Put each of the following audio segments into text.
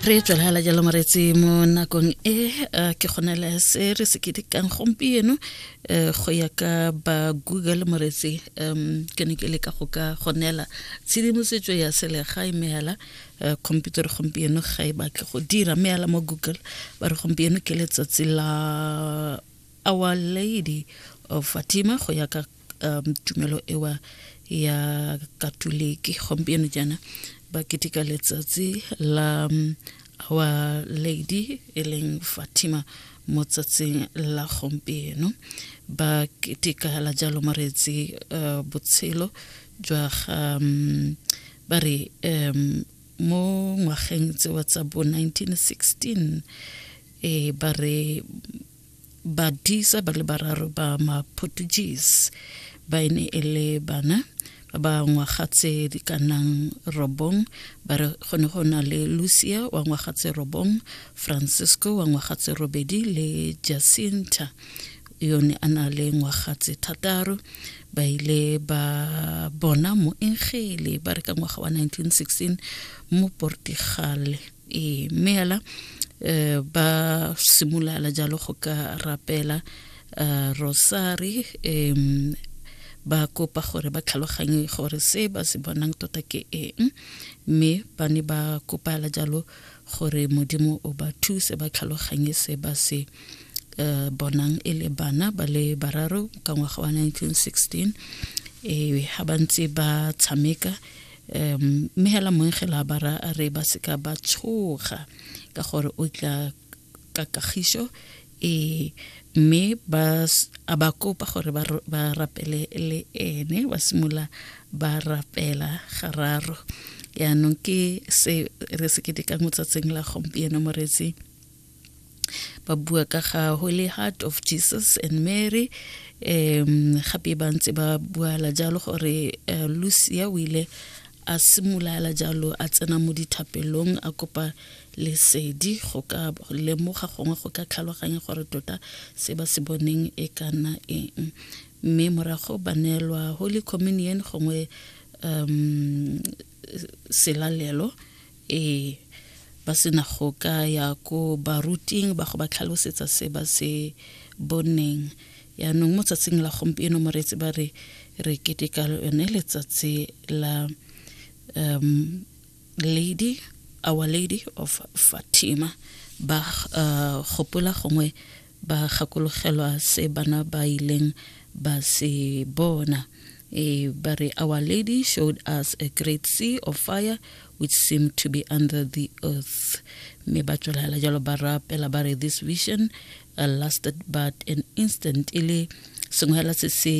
re tswelela jalo moretsi mo nakong e eh, ke kgonela se re se ketekang gompieno eh, go ya ka ba google moretsi um ke ne ke le ka go ka gonela tshedimosetso ya selegae mme fela eh, computer gompieno ga e batle go dira mme fela mo google ba re gompieno ke letsatsi la our lady of fatima go ya ka um, tumelo ewa ya katoliki gompieno jaana ba keteka letsatsi la um, our lady e leng fatima mo tsatsing la gompieno ba keteka la jalo maretsi uh, botshelo jwa ga um, ba re um, mo ngwageng tsewa tsa bo 1916 e eh, ba re badisa ba le bararo ba ma-portuguese ba e ne e le bana ba ba ngwaga tse di ka nang robong ba re go ne go na le lucia wa ngwaga tse robong francisco wa ngwaga tse robedi le jacinta yo ne a na le ngwaga tse thataro ba ile ba bona moengele ba re ka ngwaga wa 1916 mo portigale e mme hela um ba simolala jalo go ka rapela um rosari um ba kopa gore ba tlhaloganye gore se ba se bonang tota ke eng mme ba ne ba kopala jalo gore modimo o ba thuse ba tlhaloganye se ba se um bonang e le bana ba le bararo ka ngwaga wa 1916 um ga ba ntse ba tshameka um mme hela moengela ba ra re ba seka ba tshoga ka gore o tla ka kagiso e mme ba a ba kopa gore ba rapele le ene ba simolola ba rapela gararo yaanong ke se re se ketekang mo tsatsing la gompieno moretsi ba bua ka ga holy heart of jesus and mary um gape ba ntse ba buala jalo gore uh, lucia o ile a simolala jalo a tsena mo dithapelong a kopa lesedi go ka lemoga gongwe go ka tlhaloganya gore tota se ba se boneng e kana eng mme morago ba neelwa holy communion gongwe um selalelo e ba sena go ka ya ko baruting ba go ba tlhalosetsa se ba se boneng yaanong mo tsatsing la gompieno moreetsi ba re re keteka yone letsatsi la um lady our lady of fatima ba uh, gopola gongwe ba gakologelwa se bana ba ileng ba se bona e ba re our lady showed us a great sea of fire which seemed to be under the earth mme ba tswelela jalo ba rapela ba re this vision uh, lasted but an instant e le sengwe fela se se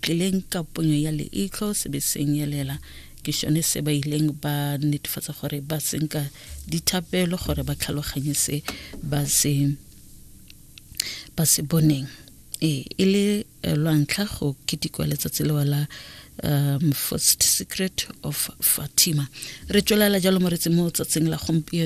tlileng ka ponyo ya leitlho se be senyelela ke sone se ba ileng ba netefatsa gore ba senka dithapelo gore ba tlhaloganye se ba se ba se boneng ee e le eh, lwantlha go ketikwa letsatsi lewa la um first secret of fatima re tswelela jalo moretsi mo tsatsing la gompieno